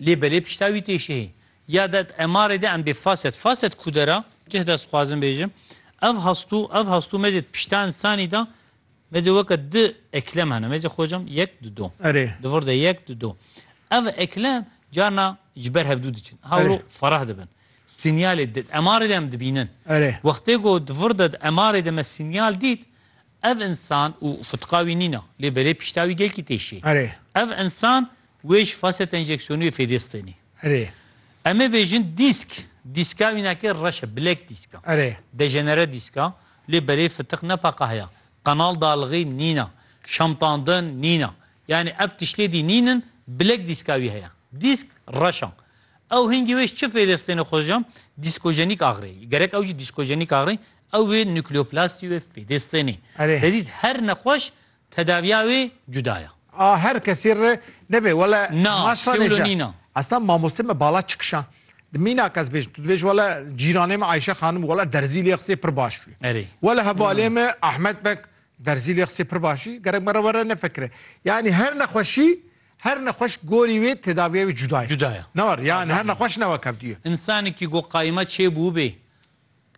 Lê belê pişta wî tê şehî. Ya de MR'ê de em bê faset faset kude ra cih de sixwazim bêjim ev hastû ev hastû me zê pişta însanî de me zê weke di eklem hene me zê xocam yek di do. Erê. Di vir de yek di do. Ev eklem carna ji ber hevdû diçin. Hewro ferah dibin. Sinyalê di MR'ê de em dibînin. Erê. Wextê ku di vir de di MR'ê de me sinyal dît Ev insan û fitqa wî nîna, lê belê pişta wî gelkî tê şê. Ev insan wê ji faset enjeksiyonî wê fêdê stênê. Em ê bêjin dîsk, dîska wî nake reş e, bilek dîsk e. Dejenere dîsk e, lê belê fitiq ne paqa heye. Qenal dalixî nîna, şamtandin nîna. Yanî ev tiştê dî nînin, bilek dîska wî heye. Dîsk reş e. Ew hingî wê ji çi fêdê stênê xwe ji? Dîskojenîk axirê. Gerek ew jî dîskojenîk axirê, Ew wê nukleoplastî wê fêdê sênê. Hezîz her nexweş tedaviya wê cuda ye. A her kesî re nebe wele hema şanê je. Esna mamostê me bala çikişan di mînak ez bêjim tu dibêj wele cîranê me Ayşe xanim wele derzî lê qisê pir baş bûye. Erê. Wele hevalê me Ahmet Bek derzî lê qisê pir baş bûye. Gerek me re were nefekire. Yanî her nexweşî her nexweş gorî wê tedaviya wê cuda ye. Cuda ye. Ne war yani her nexweş ne wek hevdûye. Însanekî ku qayma çêbûbê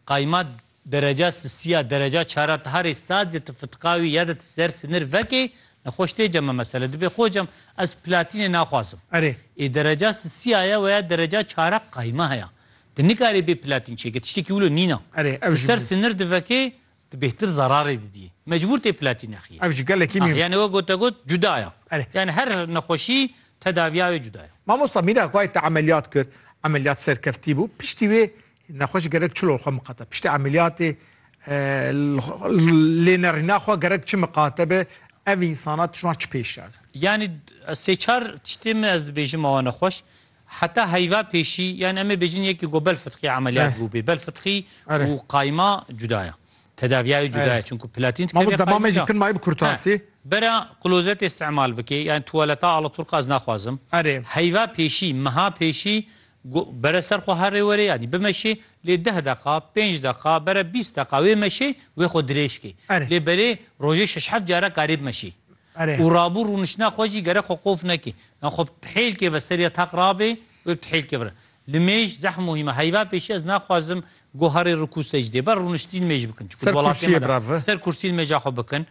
Qayma dereca sisiya dereca çara ti harê sat ya ti fitka wî ya de ti ser sinir vekê nexweş tê cem me mesele dibê xwe cem ez platînê naxwazim. Erê. Ê dereca sisiya ye weya dereca çara qayma heya. Ti nikarî bê platîn çêkê tiştekî wilo nîna. Erê ev Ti ji ser bo. sinir divekê Tu bêhtir zerarê didîyî. Mecbûr tê platî nexîyî. Ev ji gelekî mî. Ah, yanî we gote got cuda ya. Belê. Yanî her nexweşî tedavîya wê cuda ya. Mamosta mîna ku ay te emeliyat kir, emeliyat serkeftî bû, piştî wê nexweş gerek çi li xwe miqate? Piştî emeliyatê lênerîna xwe gerek çi miqate be? Ev însanan tijwan çi pêş derdin? Yanî sê çar tiştê min ez dibêjim awa nexweş. Heta heyva pêşî yan em ê bêjin yekî ku belfitqî emeliyat Eh. bûbê. Belfitqî Erê. û qayma cuda ye. Tedaviya wê cuda Erê. ye. Çunku platîn Ma min dikeve demamê jî kin mayî bi kurtasî. He. Bera klozetê îstimal bikê yan tuwaleta alaturka ez naxwazim. Erê. Heyva pêşî, meha pêşî ku bere ser xwe herê werê yanî bimeşê lê deh deqa, pênc deqa, bere bîst deqa wê meşê wê xwe dirêj kê. Erê. Lê berê rojê şeş heft care karê bimeşê. û rabû rûniştina xwe jî gerek xwe qof neke, yan xwe bi pihêlkê ve seriya taq rabe, wê bi pihêlkê bire. Li mêj zehm û hîm e. Heyva pêşî ez naxwazim guharê rikû secdê, ber rûniştirîn mêj bikin. Çikû di welatê me de ser kursî li mêja xwe bikin.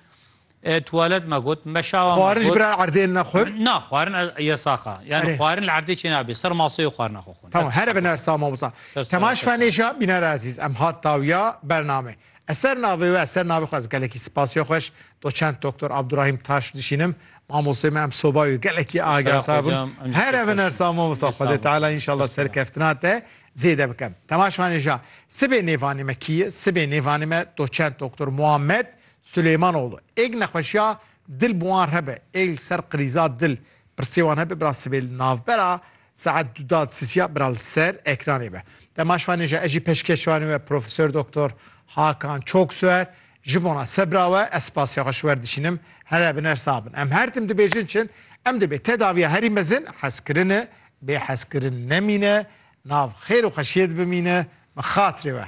Tuwalet me got, meşawa me got. Xwarin jî bira erdê naxwin? Na, xwarin yasak e. Yan xwarin li erdê çênabe. Ser maseyê xwarina xwe xwin. Tamam, here binersa mamosta. Kemaş Fenê jî hat bînere ezîz. Em hat dawiya bername. Ez ser navê we, ser navê xwe ez gelekî sipasê xweş doçent Doktor Abdurahîm Taş dişînim. Mamostê me em soba wî gelekî agahtar bûn. Here bin ersa mamosta Xwedê Teala înşallah serkeftina te zêde bike. Temaşvanê ja sibê nêvanê me kî ye? Sibê nêvanê me doçent Doktor Muhammed Suleymanoğlu. Êg nexweşiya dil bi wan re be, êg li ser krîza dil pirsê wan hebe bira sibê li navbera Saet du da sisiya bira li ser ekranê be. Dema şivanê ji ez jî peşkêş şivanê we Profesor Doktor Hakan Çoksoer ji bona sebra we ez spasiya xwe ji wer dişînim here bin her sax bin. Em her tim dibêjin çin em dibê tedaviya herî mezin hezkirine bê hezkirin nemîne nav xêr û xweşiyê dibimîne bi xatirê we.